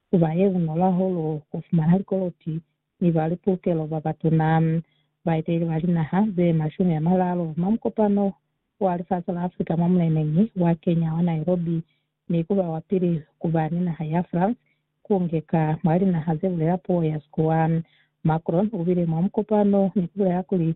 ku ba ye bunolo hahulu ku fumana likoloti ni ba li pulukelo ba batuna. Baeteleli ba linaha ze mashumi a maralu mwa mukopano wa lifasi la Afrika mwa muleneñi wa Kenya wa Nairobi ni ku ba wa pili ku ba ni naha ya France ku ngeka mwa linaha ze bulela puo ya Sikuwa. Macron u bile mwa mukopano ni ku bulela kuli,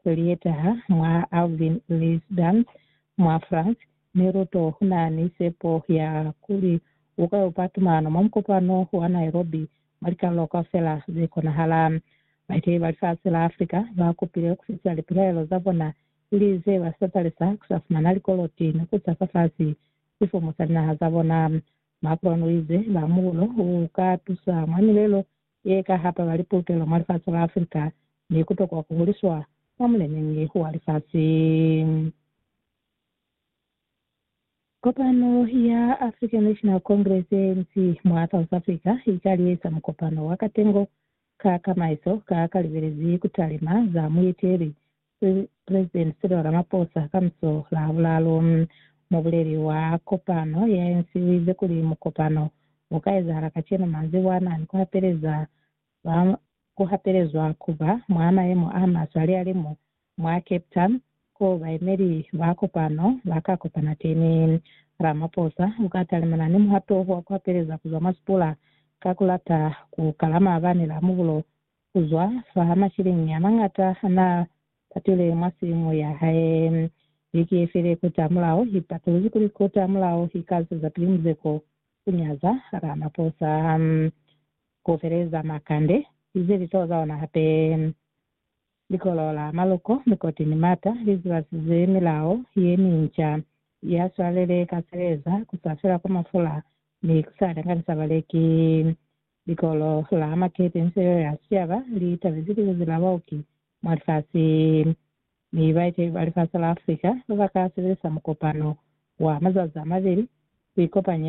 Ku lietaha mwa Alvin les Dames mwa France, Miluto u na ni sepo ya kuli u ka upa tumano mwa mukopano wa Nairobi mwa likalolo kaufela ze konahala. Baeteleli ba lifasi la Africa ba kupile ku fitisa lipilaelo za bona ili ze ba sa talisa ku sa fumana likoloti ni ku sa fa fasi sifumu sa linaha za bona. Macron u ize, Lamulo u ka tusa mwa milelo ye ka hapa bali pulukelo mwa lifasi la Africa ni ku tokwa ku huliswa mwa muleneñi wa lifasi. Kopano ya African National Congress, ANC, mwa South Africa i ka liesa mukopano wa katengo ka kamaiso ka ka libelezi ku talima za mueteli se President Cyril Ramaphosa ka muso la bulalu, mubuleli wa kopano ya ANC u ize kuli mukopano u ka ezahala kacenu manzibwana ni ku hapeleza ba ku hapelezwa ku ba mwa mayemo a maswe alihalimu mwa Cape Town ko bayemeli ba kopano ba ka kopana teni. Ramaphosa u ka talimana ni muhato wa ku hapeleza ku zwa mwa sipula ka ku lata ku kala maabani la mubulo ku zwa fa masheleñi a mañata a n'a patile mwa simu ya hae. Biki ye file kotamulaho, i patuluzi kuli kotamulaho i ka zwezapili muzeko u nyaza Ramaphosa, ku feleza makande, ize litoho za ona hape. Likolo la Maloko, Mikoti ni Mata li zibasize milao ye minca ya swalele ka seleza, ku sa fela kwa mafula ni ku sa danganisa baleki. Likolo la Makete Inselelo ya Sicaba li tabezi lizazi la baoki mwa lifasi mi baeteli ba lifasi la Africa ba ka sebelisa mukopano wa mazazi a mabeli ku ikopanya